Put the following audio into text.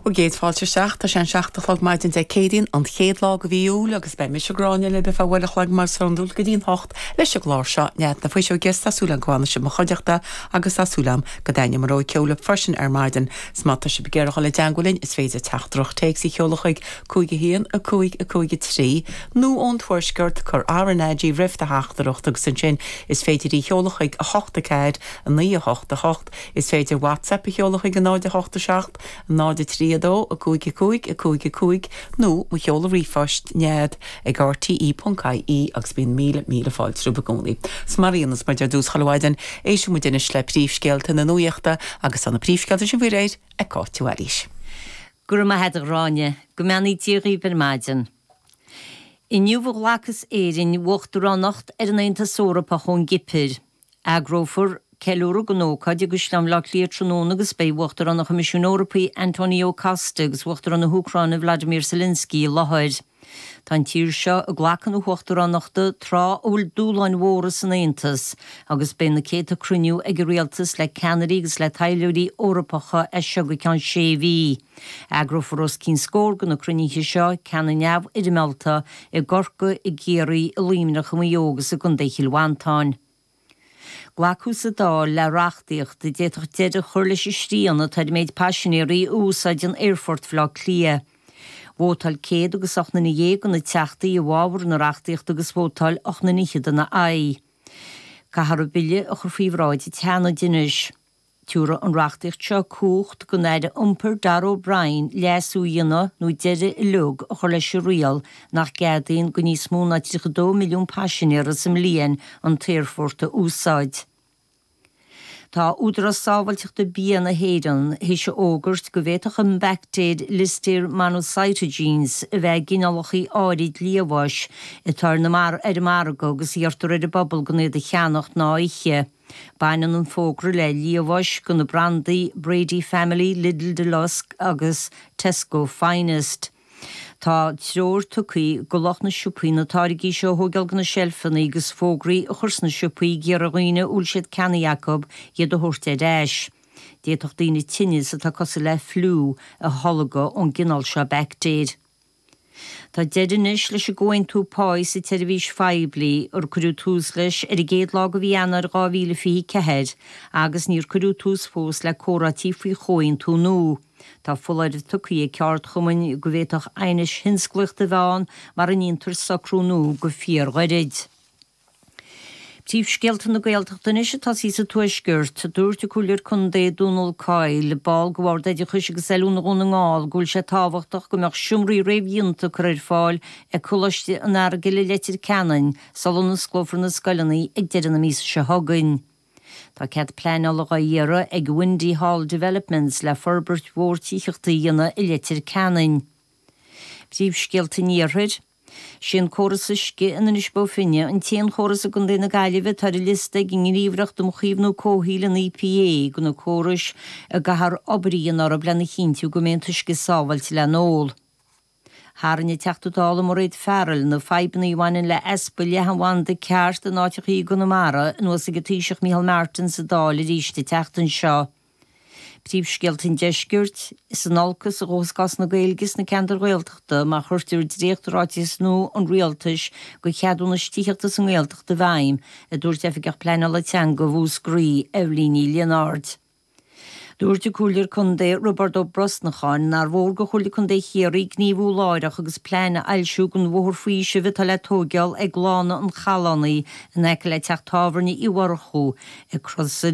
Bhur gcéad Fáilte isteach. Tá sé an seacht a chlog maidin Dé Céadaoin, an chéad lá de mhí Iúil agus beidh mise, Gráinne, libh ar feadh uair a chloig mar is iondúil go dtí an hocht leis an gclár seo, Nead na Fuiseoige agus tá súil agam go bhfanfaidh sibh i mo chuideachta agus tá súil agam go dtaitneoidh mo rogha ceoil libh freisin ar maidin agus má tá sibh ag iarraidh dul i dteangmháil linn is féidir teachtaireacht téacs a sheoladh chuig 5 1 5 5 3 nó ón Tuaisceart cuir RnaG roimh do theachtaireacht agus ansin is féidir í sheoladh chuig 8 4 9 8 8 Is féidir WhatsApp a sheoladh chuig 0 8 7 0 3 2 5 5 5 5 nó mo sheoladh ríomhphoist, Nead ag RTÉ.ie agus bíonn míle, míle fáilte romhaibh i gcónaí. So mar a dhéanas muid ar dtús chuile mhaidin, éistfidh muid anois le príomhscéalta na nuachta agus tá na príomhscéalta sin faoi réir ag Cáit de Bhailís. Go raibh maith agat a Ghráinne. Go mbeannaí Dia dhaoibh ar maidin. Inniu a ghlacfas Éirinn uachtaránacht ar an Aontas Eorpach ón gCipir. Eagrófar ceiliúradh dhon ócáid i gCaisleán Bhleá Cliath tráthnóna agus beidh Uachtarán an Choimisiúin Eorpaí Antonio Costa agus Uachtarán na hÚcráine Volodymyr Zelensky i láthair. Tá an tír seo ag glacadh na huachtaránachta tráth a bhfuil dúshláin mhóra san Aontas agus beidh na céadta cruinniú ag an rialtas le ceannairí agus le taidhleoirí Eorpacha as seo go ceann sé mhí. Eagrófar os cionn scór go na cruinnithe seo, ceanna neamhfhoirmeálta, i gCorcaigh, i gCiarraí, i Luimneach, i Maigh Eo agus i gContae Chill Mhantáin. Glacadh sa Dáil le reachtaíocht a d'fhéadfadh deireadh a chur leis an srian atá ar an méid paisinéaraí a úsáideann Aerfort Bhaile Átha Cliath. Vótáil céad agus ocht nduine dhéag de na teachtaí i bhfábhar na reachtaíochta agus vótáil ocht nduine fhichead ina haghaidh. Caithfear an bille a chur faoi bhráid an tSeanaid anois. Tiúrfaidh an reachtaíocht seo cumhacht don Aire Iompair Darragh O'Brien leasú a dhéanamh nó deireadh uilig a chur leis an riail nach gceadaíonn go níos mó ná 32 milliún paisinéara sa mbliain an t-aerfort a úsáid. Tá Údarás Sábháilteachta Bia na hÉireann tar éis a fhógairt go bhféadfadh an bhaictéir Listeria monocytogenes a bheith i gcineálacha áirid liamháis atá ar na ar an margadh agus iarrtar ar an bpobal gan iad a cheannach ná a ithe. Baineann an fógra le liamháis do na brandaí Brady Family, Lidl Deluxe agus Tesco Finest. Tá treoir tugtha go lucht na siopaí na táirgí seo a thóigeáil de na seilfeannaí agus fógraí a chur sna siopaí ag iarraidh ar dhaoine a bhfuil siad ceannaithe acu iad a thabhairt ar ais. D'fhéadfadh daoine tinneas atá cosúil le fliú a tholgadh ón gcineál seo baictéir. Tá deireadh anois leis an gcomhaontú páí sa tseirbhís phoiblí ar cuireadh tús leis ar an gcéad lá de mhí Eanáir 2024 agus níor cuireadh tús fós le comhráití faoi chomhaontú nua. Tá foláireamh tugtha ag ceardchumainn go bhféadfadh aighneas tionsclaíochta a bheith ann mura ndéantar socrú nua go fíorghairid. Príomhscéalta na Gaeltachta anois. A Tásí, sa Tuaisceart. Dúirt an Comhairleoir Contae Dónal Coyle, ball de Bhord Oideachais agus Oiliúna Dhún na nGall, go bhfuil sé tábhachtach go mbeadh seomraí réamhdhéanta curtha ar fáil ag Coláiste an Earagail i Leitir Ceanainn sula n-osclófar na scoileanna ag deireadh na míosa seo chugainn. Tá cead pleanála á iarraidh ag Windy Hall Developments le forbairt mhór tithíochta a dhéanamh i Leitir Ceanainn. Príomhscéalta an Iarthair. Sé an córas uisce in Inis Bó Finne an t-aon chóras i gContae na Gaillimhe atá ar an liosta ag an nGníomhaireacht um Chaomhnú Comhshaoil, an EPA, de na córais a gcaithfear obair a dhéanamh orthu lena chinntiú go mbeidh an t-uisce sábháilte le n-ól. Tharraing an Teachta Dála Mairéad Farrell na fadhbanna a bhaineann le easpa leathanbhanda cheart in áiteacha i gConamara anuas ag an Taoiseach Micheál Martin sa Dáil arís an tseachtain seo. Príomhscéalta an deiscirt, Is in olcas a ghabhfas cás na Gaeilge sna ceantair Ghaeltachta má chuirtear dréacht ráiteas nua an Rialtais do cheadúnais tithíochta sa nGaeltacht i bhfeidhm, a dúirt Oifigeach Pleanála Teanga Mhúscraí, Eibhlín Ní Lionáird. Dúirt an Comhairleoir Contae Roibeárd Ó Brosnacháin nár mhór do Chomhairle Contae Chiarraí gníomhú láithreach agus plean a fhoilsiú don bhóthar faoisimh atá le tóigeál ag Lána an Challánaigh in aice le teach tábhairne Uí Mhurchú go Crosaire